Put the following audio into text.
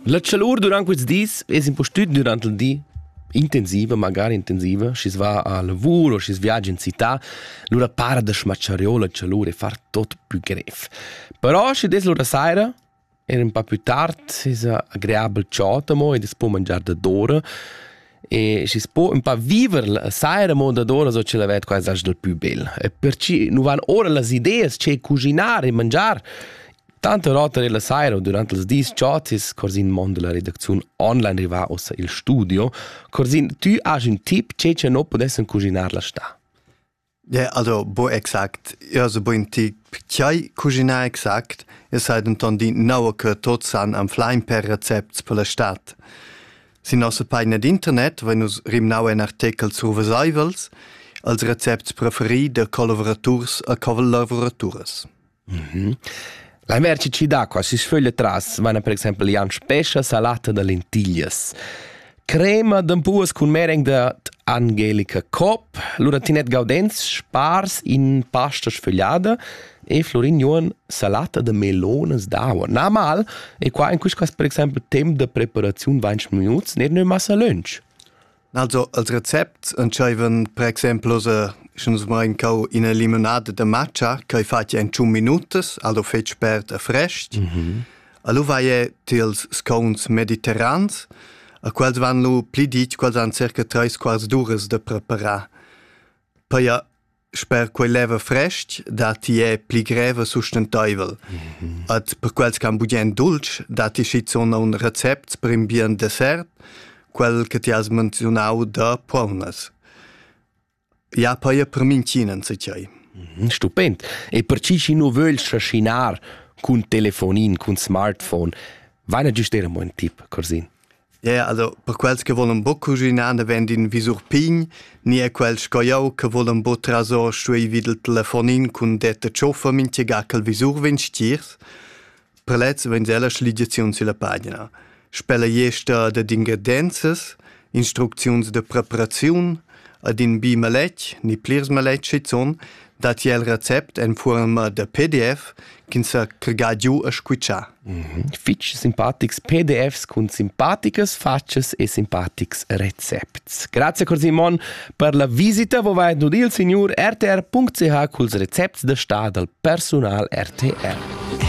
La chalur durant quels dis es impustüt durant il di intensiva, magari intensiva, schi's va a lavur o schi's viagia in città, lura para da schmatschariour la chalur e far tot plü grev. Però schi des lura saira, er ün pa plü tard, es agreabel ciot amo ed es po mangiar dadora. e schi's po ün pa viver la saira mondadora so ch'el avet quaisas dal pü bel. E perciò nu van ora las ideas che cuginar e mangiar. Tante rotta nella sera o durante els dis chotis corsin mondo la redacziun online riva ossa il studio, corsin tü has ün tip che che no podessen cuginar la sta. Yeah, also bo exakt ja se boin ti chai cuginar exact e sai denton di naua che tots san am flein per recepts per la stat. Sin nossa pagina d'internet vein nus rimnau in artecal survesaivels als recepts preferi da collavuraturs a collavoraturas. Mhm. La merci d'acqua si sföglia tras vaina per exaimpel Jan Spescha salata da lentiglias. Crema d'ampuas cun mereng da Angelica Kopp, lura Tinette Gaudenz spars in pasta sfögliada e Florin Juon salata da melonas d'aua. Na mal, e qua in quistas per exaimpel temp da preparaziun 20 minuts, ner nö massa lunch. Also als Rezept entscheivan per exempel osa sch'ns main cau ina limonada da matcha ch'ei fatg en 5 minutas, also fetg spert e frest. Mm -hmm. Allo vai e tils scounts mediterrans, a quels van lu pli ditg, quels han circa 3 quarts d'uras da preparar. Poi a Sper quei leva frestg datti è pli greva sustenteivel. Mm -hmm. Ad per quels che han bugen dulce, datti schizun un recept per in bien dessert, quel che ti has menzionau da puonas. Ja, poi è per mincinen se c'hai. Mhm, stupend. E per chi chi nu vögl trascinar cun telefonin, cun smartphone, vaina giust era mo un tip, Corsin? Yeah, also per quels che volen bo cuginar davent in visur pign, ni er quels sco jau che volen bo trasor stuei vid il telefonin cun detta tschoffa mintga che il visur vegn stiers, per lez vegn ella schligiaziun sulla pagina. Spella jester dad ingredienzas, instrucziuns de preparaziun, ad in bi maletg, ni plirs maletg schizun, dat jel recept en forma da PDF ch'ins sa cregar giu a squitschar. fich simpatics PDFs cun simpaticas fatschas e simpatics recepts. Grazie cor Simon per la visita, vo vai nud il signor rtr.ch culs recepts da sta dal personal RTR.